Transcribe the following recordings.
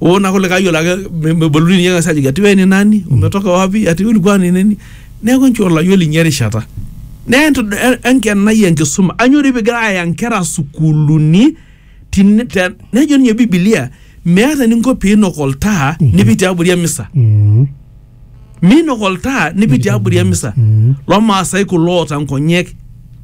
Wewe na kule kayo lake meboluni yeye sasa jigati wewe ni nani? Umetoka wapi? Ati ulikuwa ni nini? Neeku nchoo olayiolo inye erishata. Naa entu- en- enkenai enkisuma anyori pigira aya nkera sukuuluni tine- te- nejo ninye Biblia meeta eninko piinok oltaa nipik tiabori emisa. Mm. Miinok oltaa nipik tiabori emisa. Mm. Loo Maasai kulo oota nkonyek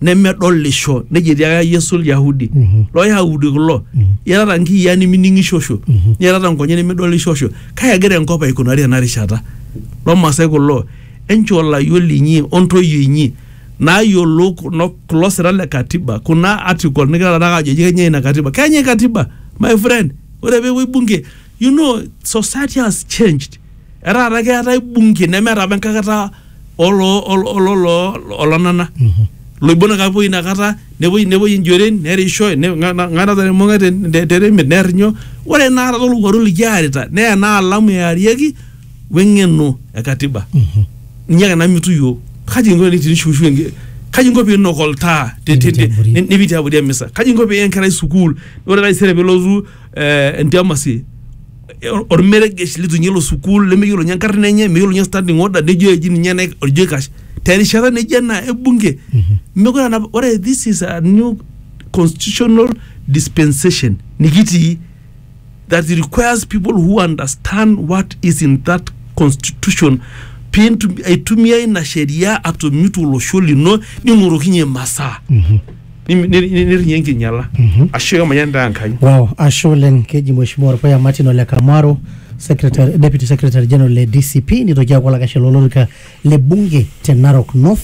nemedolisho, nejo etiaka Yesu Ilyahudi. Mhm. Loo Yahudi kulo, iatata nkiyiaa nimining'ishosho, Mhm. niatata nkonyek nimidolishosho. Kai egira enkop aikunari tena rishata? Loo Maasai kulo, enchoo layiok linyi o ntoyie inyi naayiolou kuno kulo sira le katiba, kuna article nigira taata aajo ji kenyai ina katiba. Kenyai katiba my friend. Ore peepuoi bunge, you know society has changed. etaa taata keetae bunge nemeeta apa enkakata olo- olo- olo- olo- olonana Mhm. loibon ake apuo inakata nepuoi nepuoi injoren nerisho ne- nga- nga- ngarata nemonga te- te- teremit nerrinyo ore enaata tolowuaru likiarita naa ena alamu earieki weng'eno e katiba Mhm. ninye ake namitu yiok kaji inko tinishuushu enke- kaji inko piinok oltaa te- te- te- Nipitiabori. ni- nipiti abori emisa kaji inko piiya enkerai sukuul ore taisere pelotu eh, entiamasi or- ormeregesh litunye ilo sukuul lemeyiolo nye enkarna enye meyiolo nye standing order nejo eji ninye naik orjo aikash terishata nejo ena ebunge mekure anap ore this is a new constitutional dispensation nikitii that requires people who understand what is in that constitution pintum- aitumia ina sheria atomit olosho lino ning'orokinye masaa Nim- nir- nir- nirrinye enkinyala ashu emayian taa Enkai Wow, ashe oleng keji Mheshimiwa Orpuya Martin Ole Kamaro, Secretary, Deputy Secretary General le DCP, nitoki aaku olakashe lolorika le bunge te Narok North.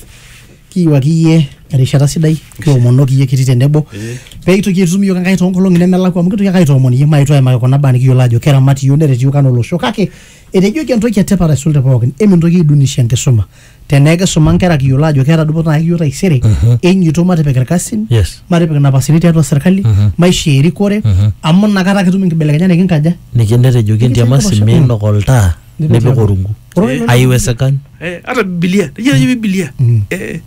Kiyiwaki iyie erishata sidai, kiomonoki iyie kiti tenebo Eh. pee itoki aitum iyiook Enkai toonkolong'i nemelakua amu kitoki ake aitoomon iyie maetu aimaki kuna baa nikiyiolo ajo keramat iyiook neret iyiook anaa olosho kake etejoki entoki etipat aisul te pookin emintoki aidunisha enkisuma tenaa kisuma nkera kiyiolo ajo keeta dupoto naa kiyieu taisere Mhm. enyoto matipik irkasin yes matipik napasini tiatua serkali Mhm. maisha erikore Mhm. amu inakata kitum inkibelekenyat nikinkaja niki netejoki entiamasi Nikisaidia passion. minok oltaa Nipik nipik tiatua. orungu Ore ilo- aiwesekani Eh, hata bibilia nejia najo bibilia Mm. Eh,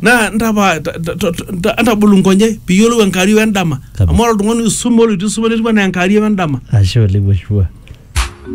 naa ntapa ta- ta- ta- ta- ntabolu nkonyek piyiolou enkario endama Kabisa. amu ore oltung'ani oisume oloitu isuma netiu anaa enkario endama ashe oleng mheshimiwa